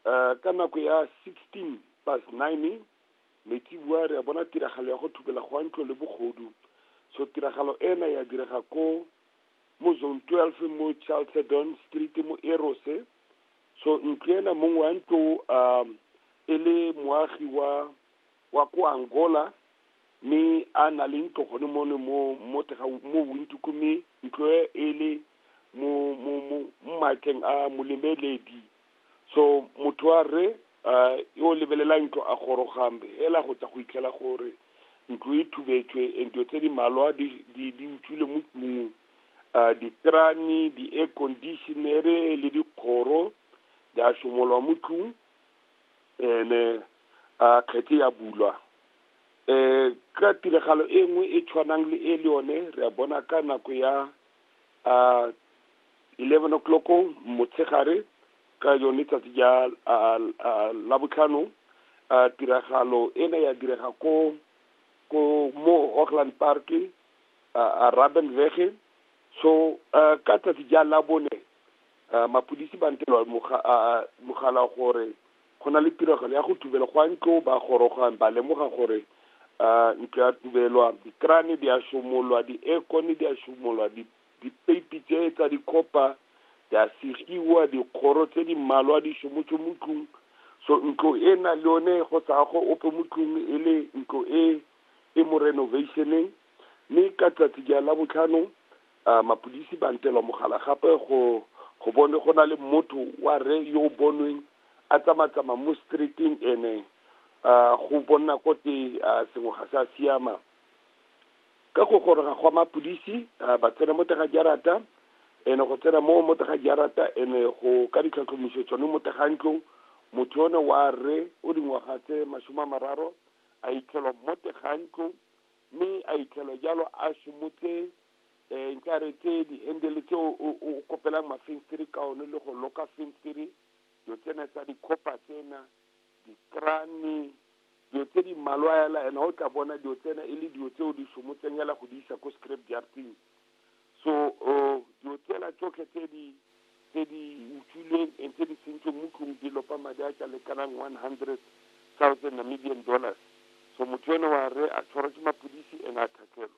Eh, ka nako ya 16 past 9 metsibua re a bona tiragalo ya go thubela go a ntlo le bogodu so tiragalo ena ya direga ko mo zone 12 mo chalcedon street mo erose so ntlo ena mongwe wa ntlo um e le moagi wa wa ko angola mme a na le ntlo gone mone mo mo tega mo windoko mme ntlo e e le mo mo mo mo maatleng a molemeledi so motho wa rre um yo o lebelelang ntlo a goroga hela go tsa go itlhela gore ntlo e thubetswe and dilo tse di malwa di di- di utswile mo tlung um ditrane di-air conditionere le dikgoro di a somolwa mo tlung ene a kgetse ya bulwa um ka tiragalo e nngwe e tshwanang le e le yone re a bona ka nako ya um eleven o'clock motshegare ka yone tsatsi ja la botlhano tiragalo ena ya direga ko ko mo Hoogland Park a Rabenweg so ka tsatsi ja la bone mapodisi ba ntelwa mogala gore go na le tiragalo ya go tubela go a ntlo ba gorogang ba lemoga gore ntlo ya tubelwa dikrane di a somolwa di-aircone di a somolwa di Dipeipi tse tsa dikhopa di a segiwa, dikgoro tse di mmalwa di somotswe mo tlung. So ntlo e na le yone go sa go ope mo tlung e le ntlo e e mo renovationeng. Mme ka tsatsi ja la botlhano uh, mapodisi ba ntelwa mogala gape go go bone go na le motho wa re yo o bonweng a tsamatsama mo streeteng ene uh, go bonna kote uh, sengwe ga sa siama ka go goroga gwa mapodisi uh, ba tsena mo tega jarata ene go tsena mo mo tega jarata ene go ka ditlhatlhomiso tsone mo tega ntlo motho yone wa rre o dingwaga tse masome a mararo a itlhelwa mo tega ntlo mme a itlhelwa jalo a somotse um nka re tse di-handele tse o kopelang mafenstere ka one le go loka fenstere dilo tsena tsa dikgopa tsena dikrane, dilo tse di mmalwa hela and ha o tla bona dilo tsena e le dilo tseo di somotseng hela go di isa ko scrap jarting so uh, dilo tsela tsotlhe tse di tse di utswilweng and tse di sentsweng mo tlong di lopa madi a ka lekanang one hundred thousand namibian dollars so motho ene wa re a tshwarwa ke mapodisi and a thathelwa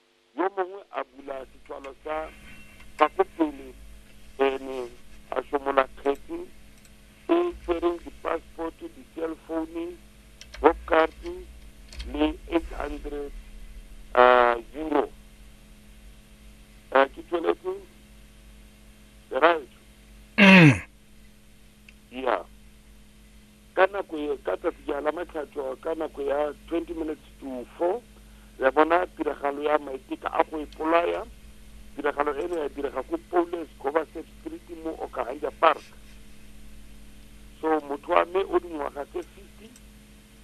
yo mongwe a bula setswalo sa gago pele ene a somola kgetse e tshwereng di-passport di-cell phone bobcard le eight hundred uh, euro uh, ke tsweletse right mm. yeah ka nako e ka tsatsi ja la matlhatso ka nako ya 20 minutes to 4 re bona tiragalo ya maiteka a go ipolaya tiragalo e ne ya direga ko Paulus Govasek Street mo Okahanja Park so motho wa me o dingwaga tse 50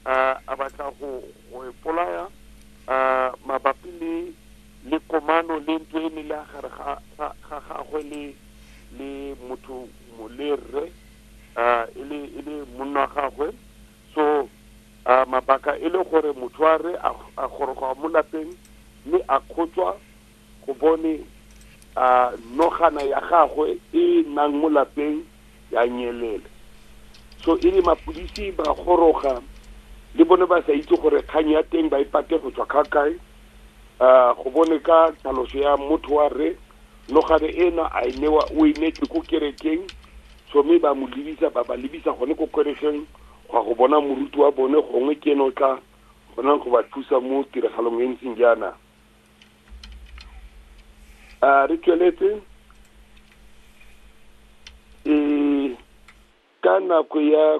uh, a batla go go ipolaya uh, mabapi le le komano le ntlo e ne le gare ga gagwe le le motho le rre uh, e le e le monna wa gagwe so uh, mabaka e le gore motho a re a goroga mo lapeng mme a kgotswa go bone uh, nogana ya gagwe e nang mo lapeng ya nyelela so e le mapodisi ba goroga le bone ba sa itse gore kgang ya teng ba e pate go tswa kgakae um go bone ka tlhaloso ya motho wa re Nogare ena a e newa o e neetswe ko kerekeng, so mme ba mo lebisa ba ba lebisa gone ko kerekeng go ya go bona moruti wa bone gongwe ke ene o tla kgonang go ba thusa mo tiragalong e ntseng jaana. A re tsweletse e ka nako ya